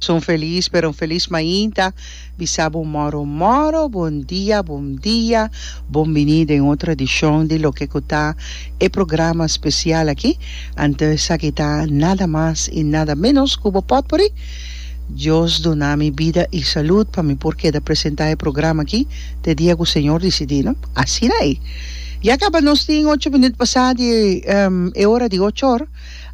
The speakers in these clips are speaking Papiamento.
Son felis pero un felis mainta bisa bo moro moro bon dia bon dia bon bini den otro edicion di loke cu ta e programa special aki ante esaki ta nada mas y nada menos cu bo potpourri Dios duna mi bida y salud pa mi por keda presenta e programa aki te dia cu Señor dicidi no asina ey ya caba nos tin ocho minuut pasa di e ora di ochor.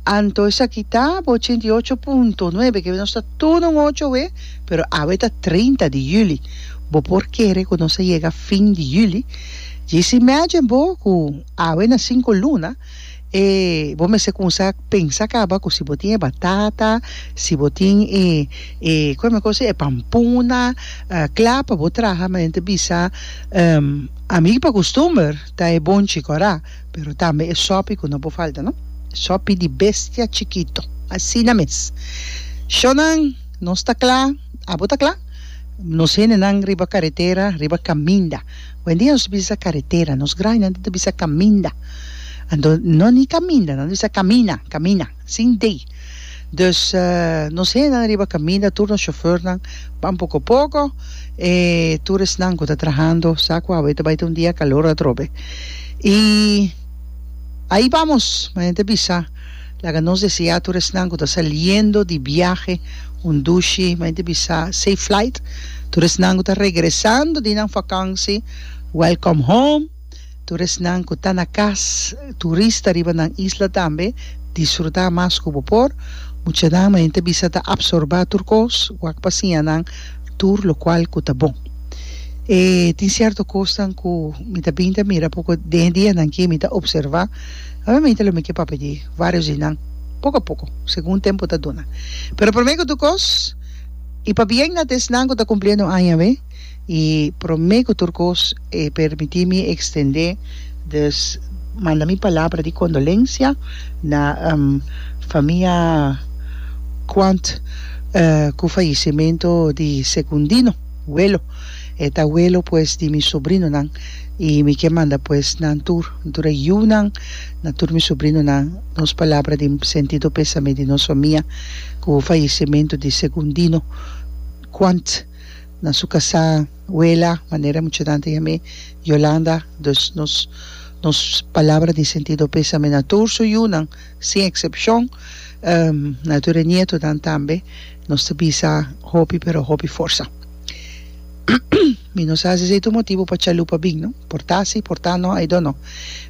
Anto esaki ta bo ochenta i ocho punto nuebe, ke nos ta tur un ocho awe, pero awe ta trinta di yüli. Bo por kere ku nos a yega fin di yüli? Djis imagine bo ku awe na sinku luna e bo mester kuminsá pensa kaba ku si bo tin e batata, si bo tin e e kon mi a kosa e pampuna, kla pa bo traha, ma nan ta bisa ami pa kustumber ta e bon chiko ra. Pero tambe e sopi ku no por falta no. Sopi di bestia chikito. Asina mes. Shonnan, nos ta kla, abo ta kla? Nos hendenan riba karetera, riba kaminda. Hoendia nos ta bisa karetera. Nos grainan ta bisa kaminda. Anto no ni kaminda, nan ta bisa kamina, kamina. Sin day. Dus nos hennan riba caminda tur nos chauffeurnan pan poco poco e tur esnan cu ta trahando sa cu awe ta bay ta un dia calor atrobe y ahi bamos manen ta bisa laga nos desea tur esnan cu ta saliendo di biahe un dushi manen ta bisa safe flight tur esnan cu ta regresando di nan vakantie welcome home. Tur esnan ku ta na kas turista riba nan isla tambe disfrutá mas ku bo por. Muchanan mañana ta bisa ta apsorbá tur kos. Wak pa siña nan tur lokual ku ta bon. E tin sierto kosnan ku mi ta bini ta mira poko den dianan ke mi ta opservá. Obviamente lo mi ke papia di vários di nan poko a poko, segun tempu ta duna. Pero promé ku tur kos i pabien na ta esnan ku ta kumpliendo aña awé. I promé ku tur kos e permití mi ekstendé des manda mi palabra di kondolensia na famia Quandt ku fayesimentu di Secundino welo. E ta welo pues di mi sobrinonan i mi ke manda pues nan tur, mi tur e yunan, na tur mi sobrinonan nos palabra di sentido pésame di nos famia ku fayesimentu di Secundino Quandt. na su casá wela manera muchanan ta yam'é Yolanda dus nos nos palabra di sentido pésame na tur su yunan sin excepcion na tur e nietonan tambe nos ta bisa hopi pero hopi forsa mi no sa si esei ta un motibu pa chalupa bin no por ta si por ta no I don't know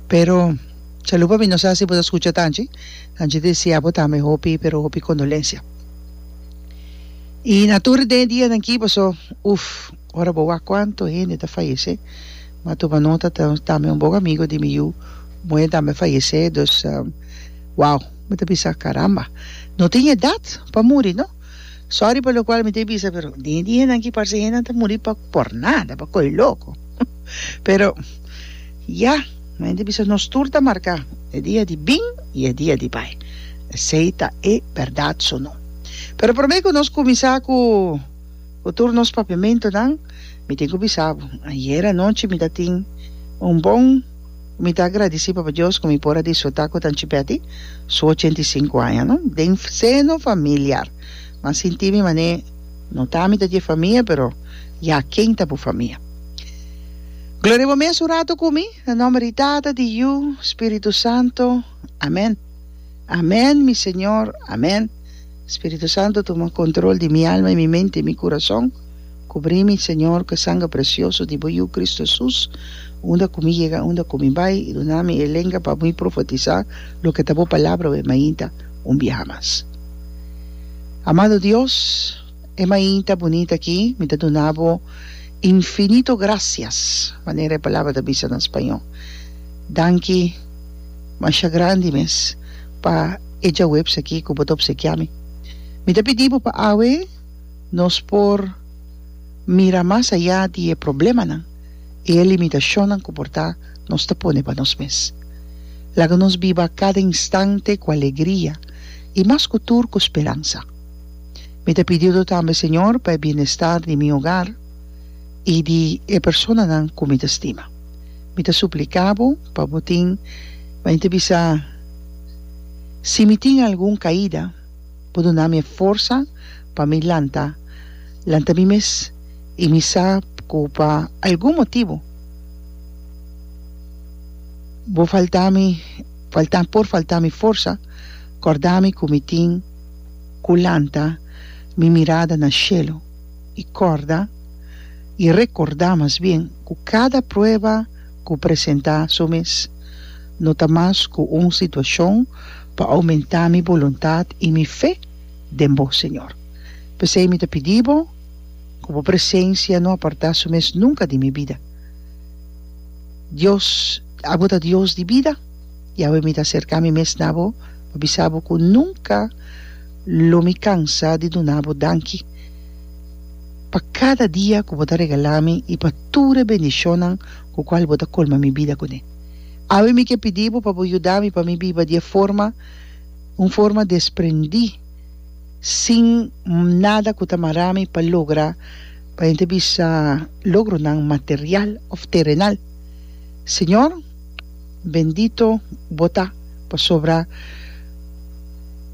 pero chalupa mi no sa si bo ta scucha tanchi tanchi ta deseabo tambe hopi pero hopi condolencia. Y na tur den dianan ki paso, uf, ora bo wak cuanto hende ta fayece, ma tuma nota tambe un bon amigo di mi yu muhé tambe fayece, dus wow, mi ta bisa caramba, no tin edad pa muri no, sorry pa locual mi ta e bisa pero den dianan ki parse hendenan ta muri pa por nada, pa coge loco, pero ya. Mi hende bisa nos tur ta marká, e dia di bin i e dia di bai. Esei ta e bèrdat su no? Pero promé ku nos kuminsá ku ku tur nos papiamentunan, mi tin ku bisa bo, ayera anochi mi ta tin un bon ku mi ta agradisí Papa Dios ku mi por a disfrutá ku Tanchi Betty su ochenta i sinku aña no den seno familiar. Mi a sinti mi manera no ta mi ta dje famia pero ya ken ta bo famia? Gloria bo mes un rato cu mi. Na nomber di Tata, di Yu, Spiritu Santo. Amen. Amen mi Señor. Amen. Spiritu Santo tuma control di mi alma y mi mente y mi curason. Cubri mi Señor cu e sangre precioso di bo Yu Cristo Jesus unda cu mi yega unda cu mi bay y duna mi e lenga pa mi profetiza loke ta bo palabra we mainta un biaha mas. Amado Dios. E mainta bunita aki, mi ta duna bo infinito gracias, manera e palabra ta bisa na spañó. Danki masha grandi mes pa e djaweps aki ku bo ta opsekiá mi. Mi ta pidi bo pa awe nos por mira mas ayá di e problemanan i e limitashonnan ku por ta nos ta pone pa nos mes. Laga nos biba kada instante ku alegria i mas ku tur ku speransa. Mi ta pidido tambe, Señor, pa e bienestar di mi hogar i di e personanan ku mi ta stima. Mi ta supliká Bo pa Bo tin Bai ta bisa si mi tin algun kaida, Bo duna mi e forsa pa mi lanta lanta mi mes i mi sa ku pa algun motibu Bo faltá mi faltá por faltá mi forsa, kòrdá mi ku mi tin. cu lanta mi mirada na shelo y corda, y recorda mas bien, cu cada prueba cu presenta su mes no ta mas cu un situacion pa aumenta mi boluntad y mi fe den Bo, Señor. P'esey mi ta pidi Bo cu Bo presencia no aparta su mes nunca di mi bida. Dios, Abo ta Dios di bida. Yahwe mi ta serka mi mes na bo pa bisa bo ku nunka lo mi kansa di duna bo danki pa kada dia ku bo ta regala mi i pa tur e bendishonnan ku kual bo ta kolma mi bida kuné. Awe mi ke pidi bo pa bo yuda mi pa mi biba di e forma un forma desprendí sin nada ku ta mara mi pa logra pa hende bisa logronan material òf terenal. Señor. Bendito bo ta, pasobra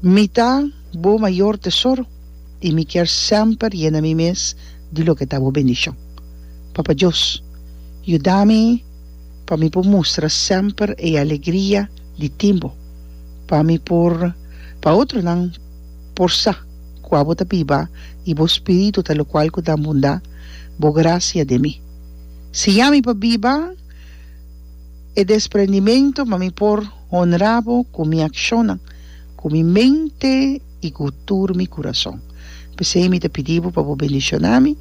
mi ta bo mayor tesoro, y mi kier semper yena mi mes di loke ta bo bendicion. Papa Dios, yuda mi pa mi por mustra semper e alegria di tin bo, pa mi por pa otronan por sa cua bo ta biba y bo spiritu ta locual cu ta bunda bo gracia den mi. Siña mi pa biba. e desprendimentu pa mi por honra Bo ku mi akshonnan, ku mi mente i ku tur mi kurason. P'esei mi ta pidi Bo pa Bo bendishoná mi,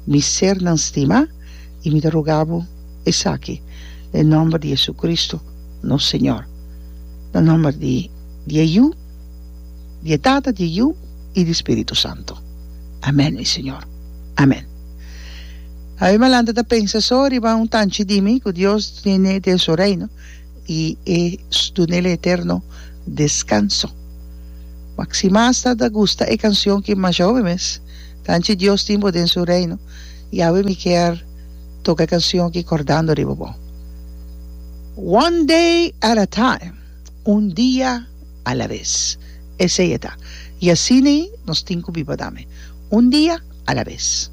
mi sernan stimá, i mi ta ruga Bo esaki den nòmber di JesuCristo, nos Señor. Na nòmber di e Yu, di e Tata, di e Yu i di e Spiritu Santu. Amèn, mi Señor. Amèn. Ai mi a lanta ta pensa so riba un tanchi di mi ku Dios tiene den su reino i e duna el eterno deskanso. Mak si mas ta ta gusta e kanshon ki masha hopi mes, Tanchi Dios tin bo den su reino, Yahweh mi kier toka e kanshon ki kordando riba bo. One day at a time, un dia a la bes. Esei e ta. I asina nos tin ku biba tambe. Un dia a la bes.